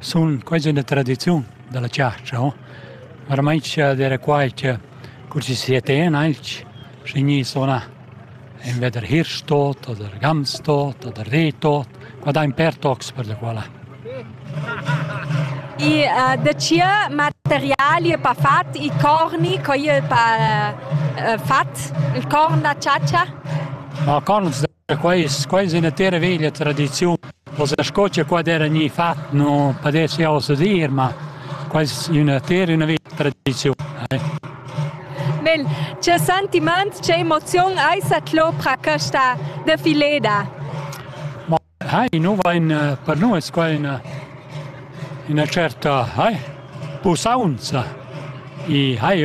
Sun quasi üna tradiziun da la chatscha, o? Varmaint scha d'eira quai cha cur chi sia ten aint, schi gni sunà invè der Hirschtot oder Gamstot oder Rehtot, qua dain per tocs per la quala. I da cia materiali e pa fat i corni co i pa fat il corn da chatscha? No corns Da quai es quai es üna terra veglia tradiziun. Forsa sco cha qua d'eira gnü fat nu pudess jau ossa dir, ma quai es üna terra, üna veglia tradiziun. Eh. Mel, che sentimaints, che emoziun ais at lo pro questa defileda? Ma hai, nu vain per nu es quai üna üna certa hai, pusaunza. I hai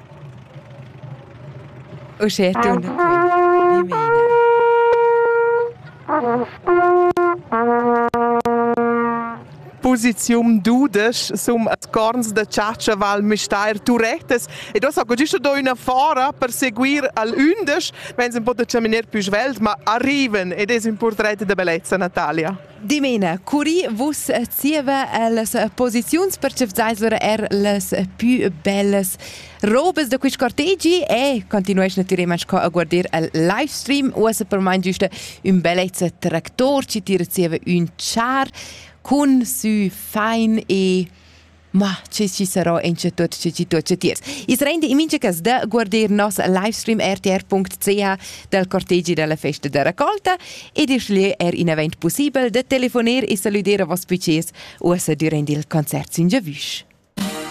Uschè tuna quai dimena. Posiziun dudesch sum as corns da chatscha Val Müstair Turetas ed ossa co giusta do üna fora per seguir al ündesch, mez un po da chaminer pü svelt, ma arriven ed es ün purtret da bellezza Natalia. Dimena, curi vus zieva las posiziuns percepzais lura er las più bellas robes da quist cortegi e continuesch natüralmaing co a guardir al livestream. Uossa per mai giusta ün bellezza tractor, ci tira zieva ün char cun sü fein e Ma che chi sarò in che tuot che chi tuot che tiers. I's renda in mincha cas da guarder nos livestream rtr.ch dal cortegi dalla festa da raccolta e da sceglier er in event possibel da telefoner e salüder a voss pucers uossa durant il concert sin giavüsch.